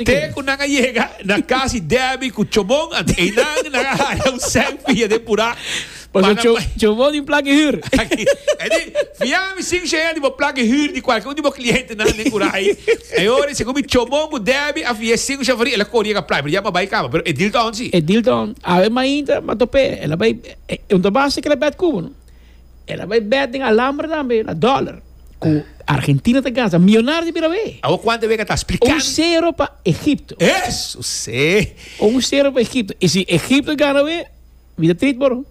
Te ku nan a yega na kas di Debbie ku Chomon anto einan nan a haya un selfie a depurá pa nan Edi, fia mi sin shea di bo plaki hür di kualke un di bo klientenan den Kurai. E hora ei segun mi Chomon ku Debbie a fia e sinku shafarí el a kor yega playa pero ya mi a bai kaba pero e dil ta on si. El a bai bet den alamber tambe na dollar cu Argentina ta gansa millonario di bira be. Awo cuanta wega ta splican. Un zero pa Egipto. Eso se. Un zero pa Egipto. Y si Egipto gana we, mi ta trit boro.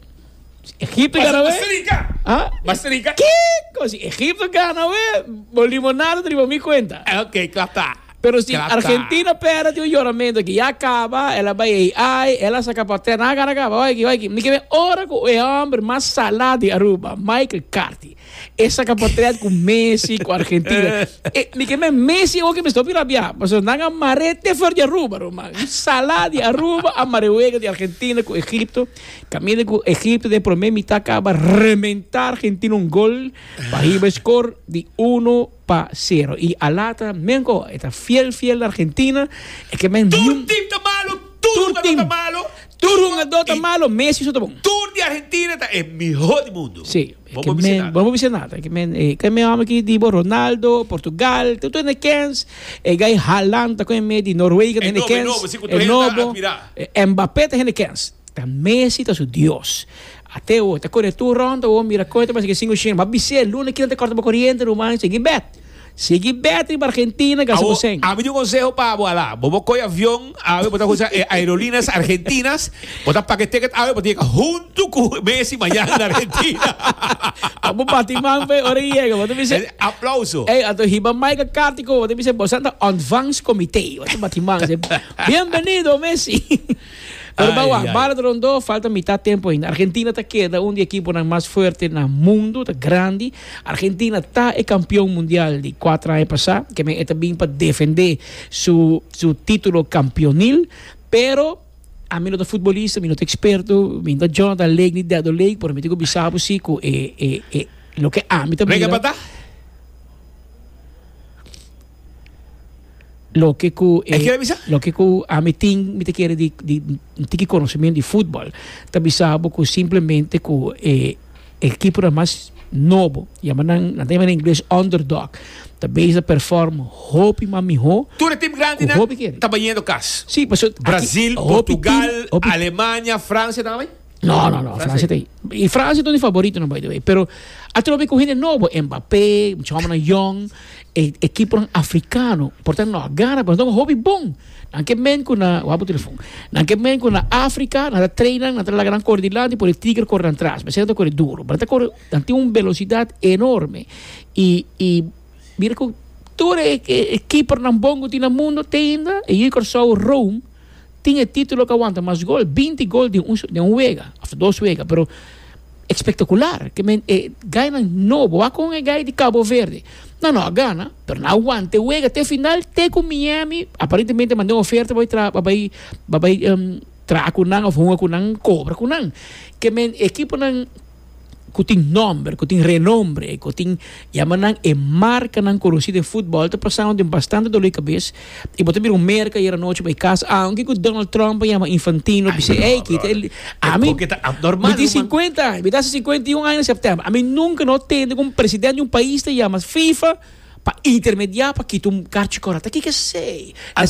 Si Egipto gana we. Basta rica. Ah? Basta rica. Kiko, si Egipto gana we, bo limonada ta riba mi cuenta. Ok, klapta. Pero si Argentina pera tin un yoramento aki ya kaba el a bai ei ai el a saka pa ter nan a gana kaba wai aki wai aki mi ke men ora ku e homber mas sala di Aruba Michael Carthy e saka potret ku Messi ku Argentina e mi ke men Messi oke mi stopi rabia pasobra nan a mare te for di Aruba ro man un sala di Aruba a mare wega di Argentina ku Egipto kaminda ku Egipto den prome mita kaba rementa Argentina un gol pa hiba e score di uno pa sero y alata men ko e ta fiel fiel na Argentina e ke men tur team ta malo tur hungador ta malo tur hungador ta malo Messi so ta bon tur di Argentina ta e miho di mundo si bo por bisa nada bo por bisa nada ke men e ke men homber aki di bo Ronaldo Portugal tur tur ne kens e gai Haland ta ko e me di Noruega ta hende kens e nobo e nobo si ku tur hende ta admira e Mbappe ta hende kens ta Messi ta su Dios. At'e oe ta kore tur rond oe mira koe ta basike sin ushen ba bis'e luna kil ta korta bo koriente ruman sigui bèt sigui bèt riba argentina gasa bo sen. Ami tin un konseho pa bo ala bo bo koi avion awe bo ta usa e aerolinas argentinas bo ta paga e ticket awe bo ta yega huntu ku Messi mañana na argentina pa bo bati man p'e ora e yega bo ta bisa aplauso ey ato hiba Michael Cartico bo ta bisa bosan ta ontvangst comité bo ta bati man bienvenido Messi. Pero Ai, bawa, ai. bala ta rondó, falta mitá tempu ainda. Argentina ta keda un di ekiponan mas fuerte na mundu, ta grandi. Argentina ta e kampion mundial di kuater aña pasá, ke men e ta bin pa defendé su su título kampionil. Pero a mi no ta futbolista, mi no ta eksperto, mi no ta Jonathan Lake ni Dedo Lake, pero mi tin ku bisa bo sí ku e e e loke ami ta Rega mira. pa ta. Loke ku e. E kier a bisa? Loke ku ami tin mi ta kere di di un tiki konosementu di futbol ta bisa bo ku simplemente ku e ekiponan mas nobo yama nan nan ta yama na ingles underdog ta bes a perform hopi mas mihó Tur e tim grandinan hopi kere. ta bañendo kas. Sí, pasobra aki Brazil, hopi tim Portugal, hopi Alemania, Francia, e tabatin. No, no, no. Francia te. Y Francia es mi favorito, no, by the way. Pero a trobe con gente nuevo. Mbappé, muchos hombres young, e, equipo africano. Por tanto, no, gana, pero no, hobby bon. Dan que men con na, wapo telefon. Dan que men con na África, na trainan, na la gran cordilante, por el tigre corre atrás. Me siento corre duro. Pero corre, dan tiene una velocidad enorme. Y, y, mira que, todo el equipo nan bongo tiene mundo, te ainda, e yo corso Rome, Tin e titulo cu a wanta mas gol, binti gol den un den un wega of dos wega, pero espectacular ke men e gainan nobo, wak con e gai di Cabo Verde, nan no a gana pero nan a wanta e wega te final te cu Miami aparentemente a manda un oferta pa bai pa bai pa bai traha cu nan of hunga cu nan cobra cu nan, ke men e ekiponan. ku tin nòmber, ku tin renombre, ku tin yama nan e markanan konosí den futbòl ta pasando den bastante dolor di kabes i bo ta bira un merka ayer anochi bai kas aunke ku Donald Trump a yama Infantino a bis'é ey kita el ami mi tin sinkuenta aña mi ta hasi sinkuenta i un aña na sèptèmber ami nunka no tende ku un presidente di un pais ta yama FIFA pa intermediá pa kita un karchi kòrda ta kiko esei.